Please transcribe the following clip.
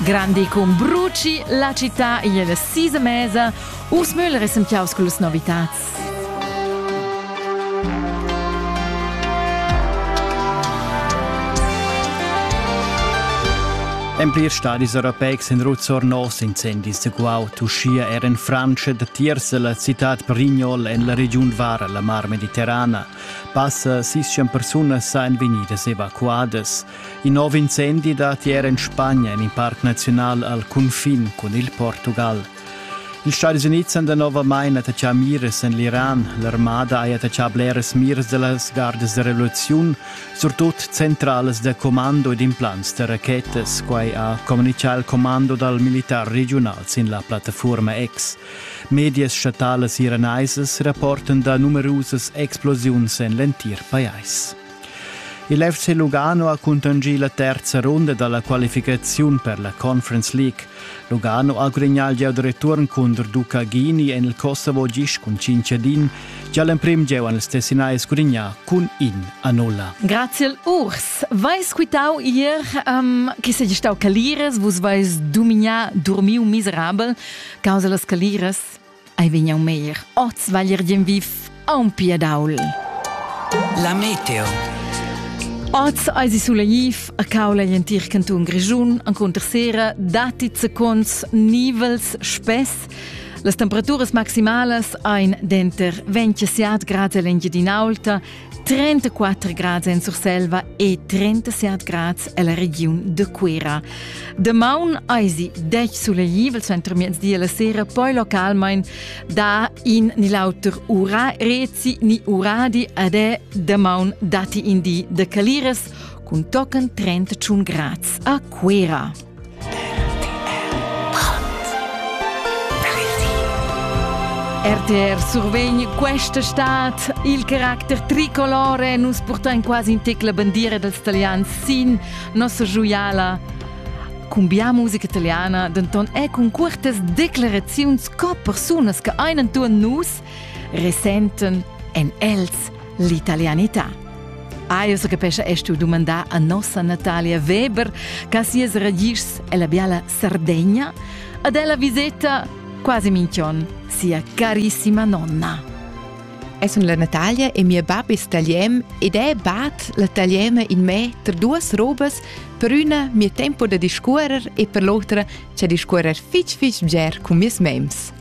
Grandi cum bruci, la città igl sisa mesa, Urs Müller è sentiaus con las novitats. En plirs stadis europeics in ruzzor nos incendis de guaut, uschia er in Francia da tierza la città Prignol en la regiun Var, la Mar Mediterrana. Passa 600 persunas san venidas evacuadas. In nov incendi dat ier en Spagna en in parc naziunal al cunfin cun il Portugal. Ils Stadis Unids han danovamain attachà miras en l'Iran. L'armada ha attachà bleras miras da las gardas da revoluziun, surtut centralas da commando ed implants da rachetas. Quai ha communitgà il commando dal militar regiunal sin la plattaforma X. Medias statalas iranaisas rapportan da numerusas explosiuns en l'entir pajais. Il FC Lugano ha cuntanschì la terza runda da la qualificaziun per la Conference League. Lugano ha gudagnà il gieu da return cunter Duca Ghini en il Kosovo gist cun 5 a din, gia l'emprim gieu han ils Tessinais gudagnà cun in a nulla. Grazie al Urs. Vais quitau ier um, che sei stau caliras, vus vais dumignà dormiu miserabel causa las caliras. Ei vegn jau meir oz valir dien viv aunpia daul. La meteo. Oz eisi sulaiv a caula in tir canton Grischun encunter sera datti seconds nivels spess. Las temperaturas maximalas ein denter 27 grad e l'engiadinaulta 34 grads en Surselva e 37 grads ella regiun de Cuera. Damaun eisi dec sulegl center miezdi la sera, poi localmein da in ni l'auter ura rezi ni uradi ad è damaun dati in di de caliras cun tochen 31 grads a Cuera. RTR survegn questa estate il caracter tricolore. Nus portain quasi in tec la bandiera dals italians sin nossa joiala. Cumbia musica italiana denton è cun curtas declaraziuns co persunas che ein entuorn nus resenten en els l'italianità. Ah, io sa capescha es tu dumandà a nossa Natalia Weber ca sias ragischs è la biala Sardegna ad ella viseta quasi minchion sia carissima nonna. Eu sun la Natalia e mia bab es talian ed è bat la taliana in me tra duas robas per üna mia tempo da discuorer e per l'otra cha discuorer fich fich bger cun meis mems.